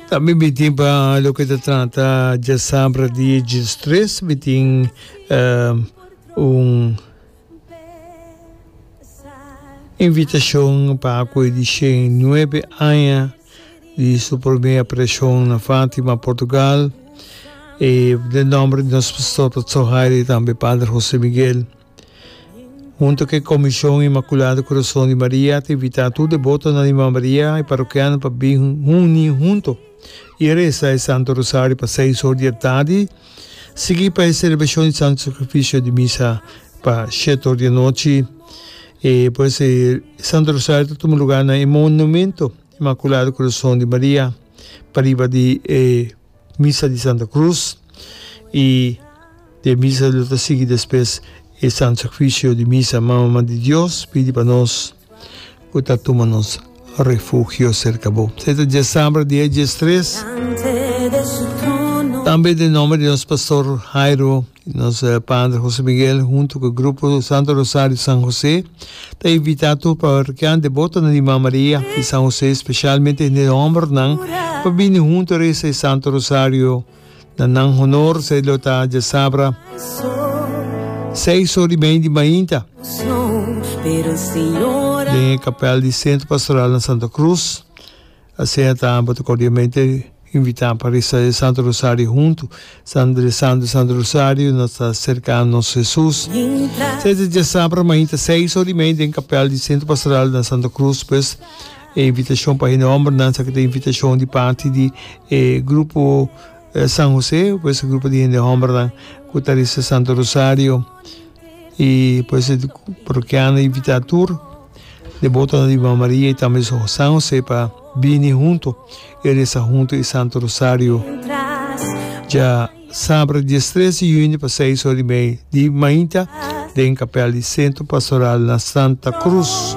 Tambe mi tin pa loke ta trata djasabra di e djistres mi tin un invitashon pa aku e dishen i nuebe aña di su prome apariashon na Fatima Portugal den nomber di nos pastor Pastor Hairi tambe Pader Hose Miguel. Hunto cu e Comision Inmaculado Corazon di Maria ta invita tur debotonan di Mama Maria y parokianonan pa bin huni hunto y reza e Santo Rosario pa seis or di e tardi, sigui pa e celebracion di Santo Sacrificio di misa pa shet or di e nochi. E pues e Santo Rosario ta tuma lugar na e Monumento Inmaculado Corazon di Maria pariba di e. Misa di Santa Cruz y e misa lo ta sigui despues e Santo Sacrificio di Misa. Mama di Dios pidi pa nos cu ta tuma nos refugio cerca bo. Sa e ta dies sabra dia dies tres. Tambe den nomber di nos Pastor Jairo. Nos Padre Jose Miguel huntu ku Grupo Santo Rosario San José ta invitá tur parrokian deboto nan di Mama Maria di San José, spesialmente hende hòmbernan, pa bini huntu resa e Santo Rosario. Na nan honor esei lo ta djasabra seis ora i mei di mainta den e kapèl di Sentro Pastoral na Santa Cruz. Asina ta, bo ta cordiamente invita pa reza e Santo Rosario huntu. San rezando e Santo Rosario nos ta cerca nos Jesus. Sete diasabra mainta seis or di mei den capel di Centro Pastoral na Santa Cruz pues e invitacion pa e nombernan sa ki ta invitacion di parti di e Grupo San Jose pues e grupo di hende hombernan cu ta reza e Santo Rosario y pues e parokiano invita tur. de boto na Divina Maria y tambe su San Jose pa bini hunto y reza hunto e Santo Rosario. Dja sabra dies tres di juni pa seis ora y mei di mainta den capel di Centro Pastoral na Santa Cruz.